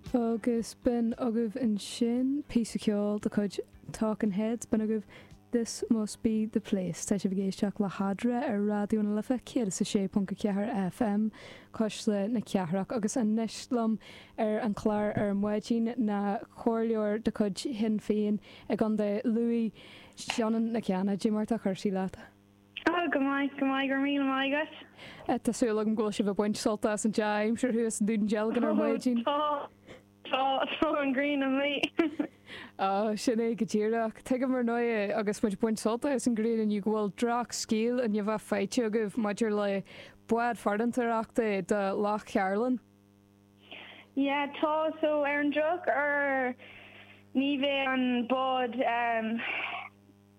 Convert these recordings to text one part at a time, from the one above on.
Agus b'in agaibh ansin píosa ceoil de chuid Talking Heads, b'in agaibh This Must Be The Place. Tá sibh ag éisteacht le hEadra ar Raidió na Life 106.4 FM, Cuisle na Cathrach, agus anois liom ar an chlár ar maidin ná comhairleoir de chuid Shinn Féin i gContae Lú, Sionainn Nic Cana. Cad é mar atá cúrsaí leat? Ó, go maith, go maith, go raibh míle maith agat. Tá súil agam go bhfuil sibh ag baint sult as an dea-aimsir thuas i nDún Dealgan ar maidin. Ó, tá, tá, tá an ghrian amuigh. Ó, sin é go díreach. Tuigim, ar ndóigh, agus muid ag baint sult as an ghrian inniu, go bhfuil droch-scéal i ndiaidh a bheith faighte agaibh maidir le bád farantóireachta do Loch Cairlinn. Yeah, tá, so, ar an droch-uair, ní bheidh an bád, ehm,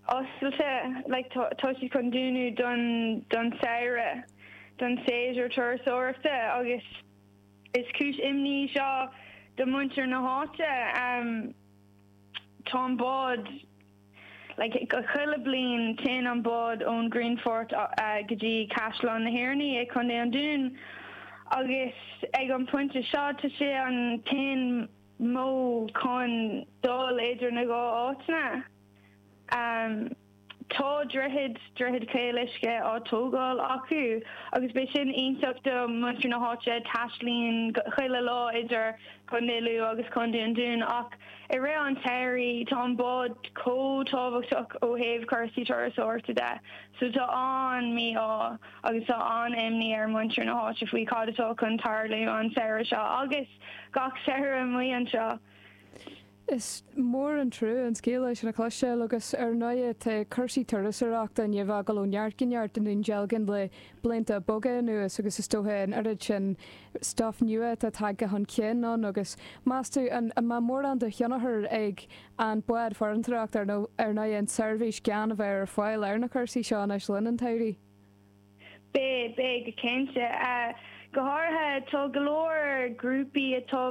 oscailte like tá siad chun dúnadh don don samhradh don séasúr turasóireachta agus is cúis imní í seo do mhuintir na háite ehm tá an bád like chuile bliain téann an bád ón Grianfort go dtí Caisleán na hOireanaí i Contae an Dúin agus ag an pointe seo tá sé an t-aon modh chun dul idir na dhá áiteanna. Tá droichead, droichead chaol uisce, á tógáil acu agus beidh sin iontach do mhuintir na háite, taistlíonn chuile lá idir Contae Lú agus Contae an Dúin ach i rith an tsamhraidh tá an bád chomh tábhachtach ó thaobh cúrsaí turasóireachta de so tá an-mí-ádh agus tá an-imní ar mhuintir na háite faoi cad atá chun tarlú an samhradh seo agus gach samhradh amuigh anseo. Is mór an trua an scéal sin a chloisteáil agus ar ndóighe tá cúrsaí turasóireachta i ndiaidh a bheith ag gabháil ó neart go neart i nDún Dealgan le blianta beaga anuas agus is dóiche an oiread sin stuif nua atá tagtha chun cinn ann agus meas tú an mbeidh mórán de thionchar ag an bád farantóireachta ar ndóighe an tseirbhís gan a bheith ar fáil ar na cúrsaí seo anois le linn an tsamhraidh? Beidh, beidh go cinnte. Go háirithe tá go leor grúpaí atá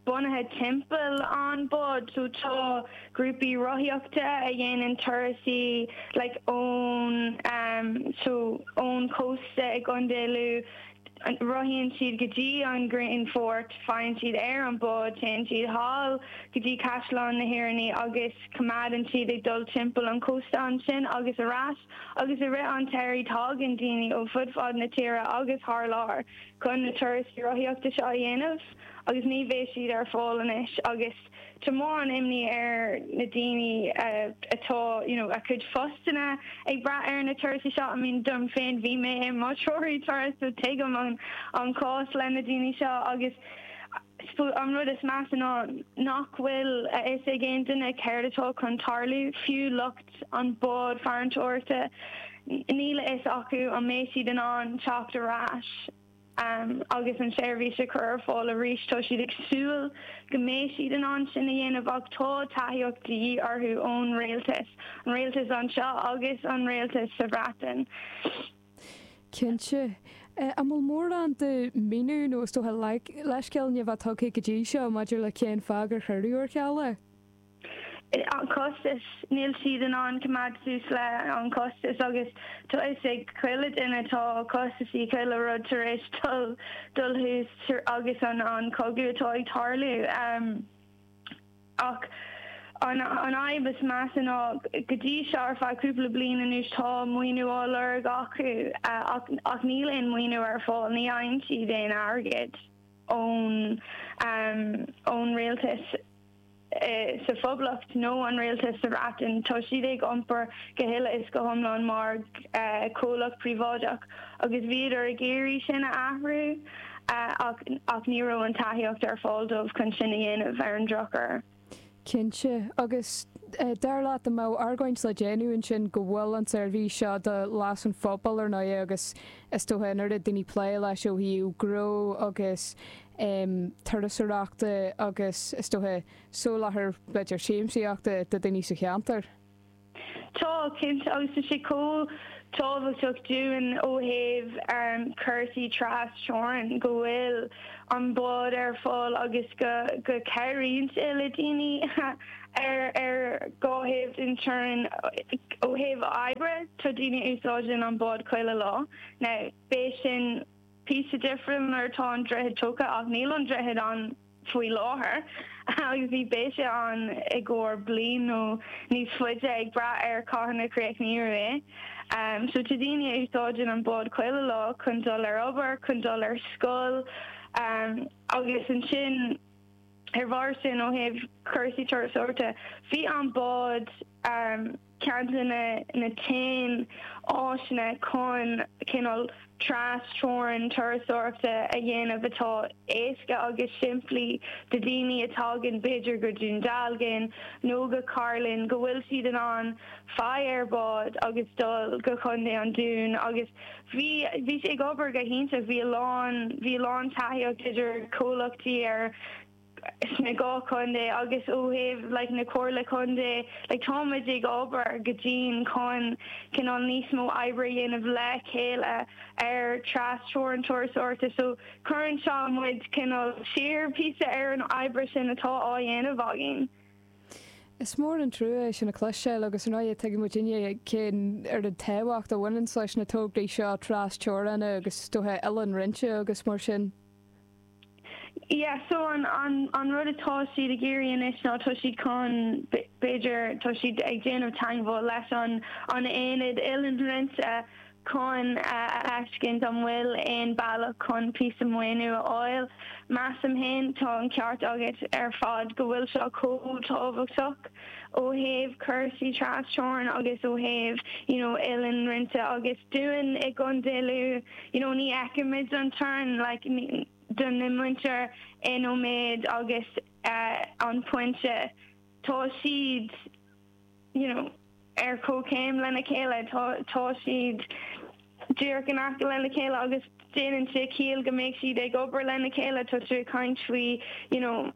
bunaithe timpeall an bád. So tá grúpaí rothaíochta a dhéanann turasaí like ón ehm so ón chósta i gContae Lú, rothaíonn siad go dtí an Grianfort, faigheann siad ar an bád, téann siad thall go dtí Caisleán na hOireanaí agus coimeádann siad ag dul timpeall an chósta ansin agus ar ais agus i rith an tsamhraidh tágann daoine ó fud fad na tíre agus thar lear chun na turasaí rothaíochta seo a dhéanamh. agus ní bheidh siad ar fáil anois agus tá mórán imní ar na daoine atá you know a gcuid phostanna ag brath ar na turais seo I mean dom féin bhí mé i mo threoraí turais so tuigim an an cás le na daoine seo agus suppose an rud is measa ná nach bhfuil a fhios ag aon duine céard atá chun tarlú fiú lucht an bád farantóireachta níl a fhios acu an mbeidh siad in ann teacht ar ais Agus an tseirbhís a chur ar fáil arís, tá siad ag súil go mbeidh siad in ann sin a dhéanamh ach tá tacaíocht de dhíth orthu ón Rialtas, an Rialtas anseo agus an Rialtas sa Bhreatain. Cinnte. An bhfuil mórán de mhíniú nó, is dócha, leithscéal ní ba tugtha go dtí seo maidir le cén fáth gur cuireadh ar ceal é? an costas, níl siad in ann coimeád suas le an costas agus tá a fhios ag chuile duine tá costasaí chuile rud tar éis dul dul suas agus an an cogadh atá ag tarlú ach an an fhadhb is measa ná go dtí seo ar feadh cúpla bliain anuas tá maoiniú á lorg acu ach ach níl aon maoiniú ar fáil ní fhaigheann siad aon airgead ón ón rialtas sa Phoblacht nó an Rialtas sa Bhreatain, tá siad ag iompar go huile is go hiomlán mar chomhlacht príobháideach agus bhíodar ag iarraidh sin a athrú ach ní raibh an tacaíocht ar fáil dóibh chun sin a dhéanamh, ar an drochuair. Cinnte. Agus dar leat an mbeadh argóint le déanamh ansin go bhfuil an tseirbhís seo do leas an phobail ar ndóigh agus is dócha an oiread daoine ag plé leis ó thaobh gnó agus um turasóireachta agus, is dócha, soláthar b'fhéidir siamsaíochta do dhaoine sa cheantar. Tá, cinnte, agus tá sé chomh tábhachtach dúinn ó thaobh um cúrsaí tras-teorann go bhfuil an bád ar fáil agus go go gcabhraíonn sé le daoine ar ar dhá thaobh den teorainn ó thaobh oibre, tá daoine a úsáideann an bád chuile lá. Now, beidh sin. píosa difriúil nuair atá an droichead tógtha ach níl an droichead ann faoi láthair agus ní bheidh sé ann i gcomhair bliain nó níos faide ag brath ar cathain a chríochnófar é. So tá daoine a úsáideann an bád chuile lá chun dul ar obair, chun dul ar scoil agus ansin ar bharr sin ó thaobh cúrsaí turasóireachta bhí an bád, Ceann de na haon áiseanna chun cineál trasteorann turasóireachta a dhéanamh atá éasca agus simplí do dhaoine a thagann, b'fhéidir, go Dún Dealgan nó go Cairlinn, go bhfuil siad in ann faigh ar bhád agus dul go Contae an Dúin. Agus bhí bhí sé ag obair go hiontach, bhí a lán bhí a lán tacaíocht idir comhlachtaí ar. sna dhá chontae agus ó thaobh like na Comhairle Contae like táimid ag obair go dian chun cineál níos mó oibre a dhéanamh le chéile ar trasteorann turasóireachta so cuireann seo muid cineál siar píosa ar an oibre sin atá á dhéanamh againn. Is mór an trua é sin a chloisteáil agus ar ndóigh tuigeann muid uilig cén oiread tábhacht a bhaineanns leis na tograí seo trasteorann agus is dócha oileán roinnte agus mar sin. Yeah, so an rud atá siad ag iarraidh anois ná tá siad chun, b'fhéidir, tá siad ag déanamh teangmháil leis an aonad Oileán Roinnte chun a fheiscint an bhfuil aon bealach chun píosa maoiniú a fháil. Measaim féin, tá an ceart agat ar fad go bhfuil seo chomh tábhachtach ó thaobh cúrsaí trasteorann agus ó thaobh, you know, oileán roinnte agus dúinn i gContae Lú, you know, ní fheicimid an teorainn, like, do muintir in Ó Méith agus An Pointe, tá siad, you know, ar comhchéim lena chéile, tá siad díreach in aice lena chéile agus déanann sé ciall go mbeidh siad ag obair lena chéile, tá siad ag caint faoi, you know,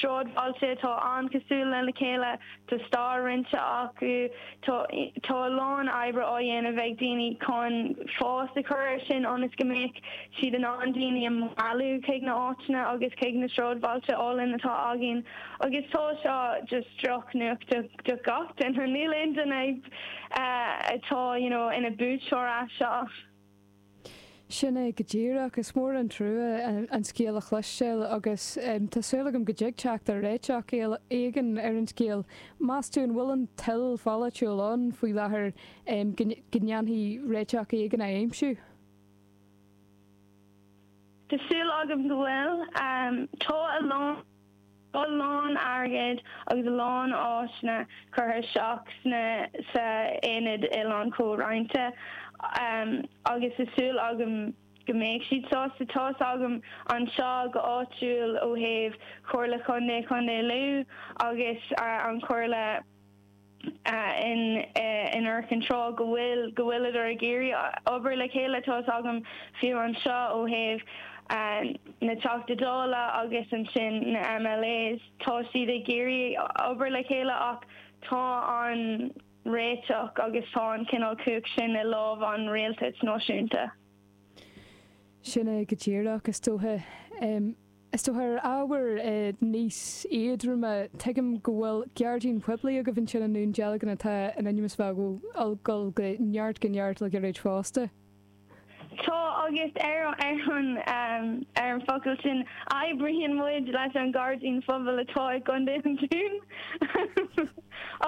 sráidbhailte atá an-chosúil lena chéile, tá stair roinnte acu, tá a lán oibre á dhéanamh ag daoine chun fás a chur ar sin ionas go mbeadh siad in ann daoine a mhealladh chuig na áiteanna agus chuig na sráidbhailte álainn atá againn agus tá seo just drochnuacht do gach duine, níl aon duine atá you know ina buaiteoir as seo. Sin é go díreach. Is mór an trua an scéal a chloisteáil agus tá súil agam go dtig teacht ar réiteach éigin ar an scéal. Meas tú an bhfuil an toil pholaitiúil ann faoi láthair go ndéanfaí réiteach éigin a aimsiú? Tá súil agam go bhfuil. Tá a lán. Tá a lán airgid agus a lán áiseanna curtha isteach sna, sa, Aonad Oileán Comhroinnte agus tá súil agam go mbeidh siad sásta tá a fhios agam anseo go áitiúil ó thaobh Chomhairle Chontae Chontae Lú agus an Chomhairle, in Iúr Chinn Trá go bhfuil, go bhfuileadar ag iarraidh obair le chéile, tá 'fhios agam fiú anseo ó thaobh na Teachta Dála agus ansin na MLAs, tá siad ag iarraidh obair le chéile ach tá an réiteach agus tá an cineál cumhacht sin i lámh an rialtais náisiúnta. Sin é go díreach, is dóiche. Is dócha ar ábhar níos éadroime, tuigim go bhfuil gairdín poiblí agaibh ansin i nDún Dealgan atá in ainm is a bheith ag dul go neart go neart le gairid fosta. Tá agus ar an bhfocal sin oibríonn muid leis an ngairdín phobail atá i gContae an Dúin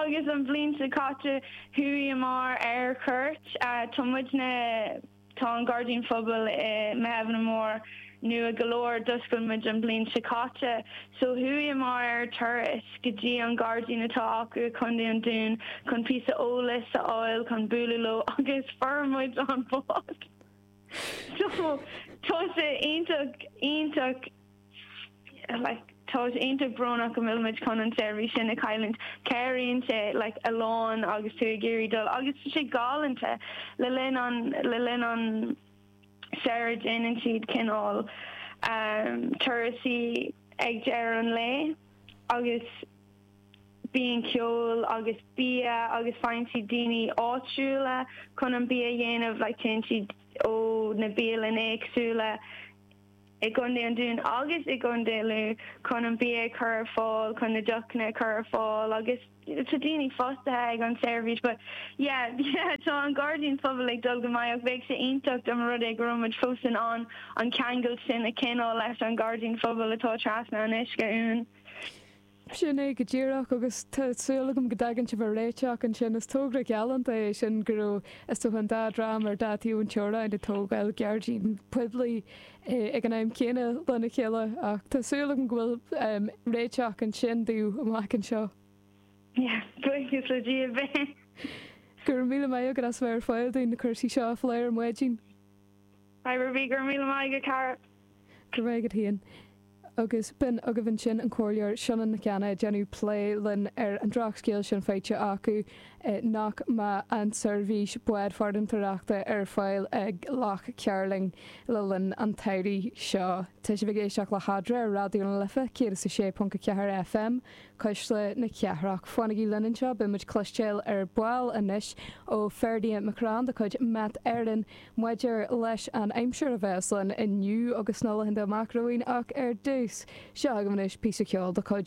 agus an bhliain seo caite chuaíomar ar chuairt, tá muidne, Tá an Gairdín Phobail i Muirtheimhne Mór nua go leor. D'oscail muid an bhliain seo caite so chuaíomar ar turas go dtí an gairdín atá acu i gContae an Dúin chun píosa eolais a fháil chun bualadh leo agus fuair muid an bád! So tá sé iontach, iontach. Tá sé iontach brónach go bhfuil muid chun an tseirbhís sin a chailliúint. Cabhraíonn sé a lán agus tú ag iarraidh dul agus tá sé galánta. Le linn an le linn an samhraidh déanann siad cineál turasaí ag deireadh an lae agus bíonn ceol agus bia agus faigheann siad daoine áitiúla chun an bia a dhéanamh. Téann siad ó na bialann éagsúla. i gContae an Dúin agus i gContae Lú chun an bia a chur ar fáil, chun na deochanna a chur ar fáil agus tá daoine fostaithe ag an tseirbhís but yeah, yeah tá an gairdín phobail ag dul go maith ach bheadh sé iontach dá mba rud é go raibh muid fós in ann an ceangal sin a choinneáil leis an ghairdín phobail atá trasna an uisce uainn. Sin é go díreach, agus tá súil agam go dtagann sibh ar réiteach ansin. Is togra galánta é sin, go raibh, is dócha, an dá dhream ar dá taobh an teorainn ag tógáil gairdín poiblí ag an am céanna lena chéile, ach tá súil agam go bhfuil réiteach ansin daoibh amach anseo. Yes, buíochas le Dia, beidh. Go raibh míle maith agat as bheith ar fáil dúinn na cúrsaí seo a phlé ar maidin. Fadhb ar bith, Go raibh míle maith agat, a chara. Go raibh agat féin. Agus b'in agaibh ansin an Comhairleoir Sionainn Nic Cana ag déanamh plé linn ar an drochscéal sin faighte acu nach mbeidh an tseirbhís bád farantóireachta ar fáil ag Loch Cairlinn le linn an tsamhraidh seo. Tá sibh ag éisteacht le hEadra ar Raidió na Life 106.4 FM, Cuisle na Cathrach. Fanaigí linn anseo, beidh muid cloisteáil ar ball anois ó Ferdia McCrann de chuid Met Éireann, Maidir leis an aimsir a bheas linn inniu agus sna laethanta amach romhainn ach ar dtús, seo agaibh anois píosa ceoil de chuid